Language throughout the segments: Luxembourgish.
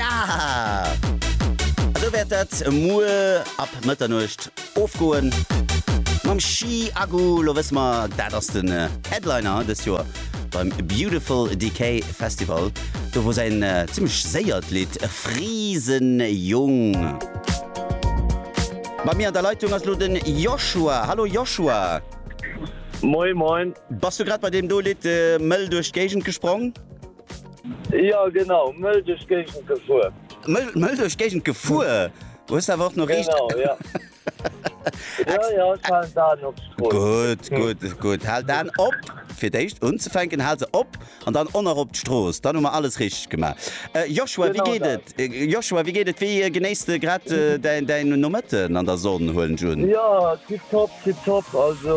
Esou wäert dat muer ab Mëtternuecht ofgoen mam Chi Agu. Lo wësse mer, dat ass den Headliner dëst Joer beim Beautiful Decay Festival, do wou säin zimmlech séiert Lidd Friesenjung Bei mir an der Leitung ass lo de Joshua. Hallo Joshua. Moin moin. Bass du grad bei deem do Lidd mëll duerch d'Géigend gesprong? Jo genau, Mëll duerch d'Géigend gefuer. Mëll duerch d'Géigend gefuer? Du hues awer och no riicht. Genau, jo. Jo, jo, ech halen d'Aen op d'Strooss. Gutt, gutt, gutt. Hal d'Aen op, fir d'éischt unzefänken. Hal se op an dann onerop op d'Strooss. Dann hu mer alles richteg gemaach. Joshua, wéi geet et? Joshua, wéi geet et? Wéi genéiss de grad däin Nomëtten an der Sonn, huelen ech un? Jo, tiptop, tiptop. Also.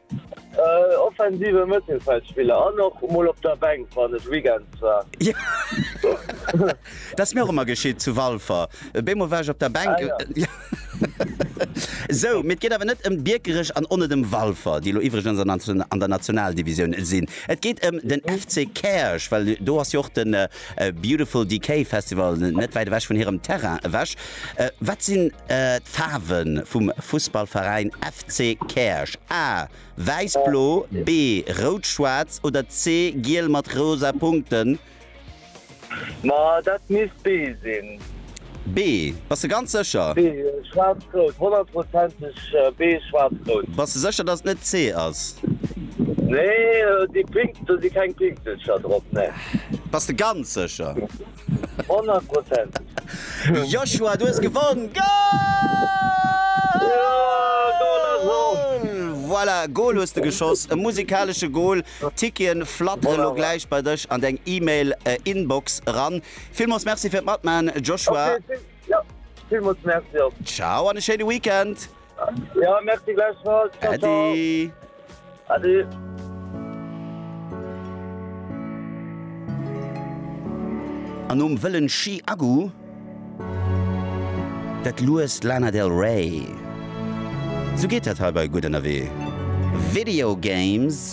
Offensive Mëttelfeldspiller an och mol op der Bänk wann et Weekends war. Dat ass mir och ëmmer geschitt zu Walfer. Beemol war ech op der Bänk. Sou, mee et geet awer net ëm Biekerech an onet ëm Walfer, déi elo iwwregens an der Nationaldivisioun sinn. Et geet ëm den FC Käerch, well do ass jo och de. A Beautiful Decay Festival, net wäit ewech vun hirem Terrain ewech. Wat sinn d'Faarwe vum Fussballveräin FC Käerch? A, Wäiss-Blo, B, Rout-Schwaarz oder C, Giel mat rosa Punkten? Ma dat misst B sinn. B, Bass de ganz sécher? B, Schwaarz-Rout, honnertprozenteg B, Schwaarz-Rout. Bass de sécher, dass et net C ass? Nee, déi Pink, do si keng Pinkselcher drop, nee. Bass de ganz sécher? Honnertprozenteg. Joshua, du hues gewonn! Goal! Voilà, Goal hues de geschoss, e musikalesche Goal. D'Ticketen flattere lo gläich bei dech an deng E-Mail-Inbox eran. Villmools Merci fir d'Matman, Joshua. Okay, vill, ja, villmools Merci och. Ciao an e schéine Weekend. Ja, merci gläichfalls. Ciao, ciao. Ade. Ade. An nom wëllen Chi Agu gëtt lues Lana Del Rey. Sou geet dat hei bei Gutt Ënnerwee Video Games.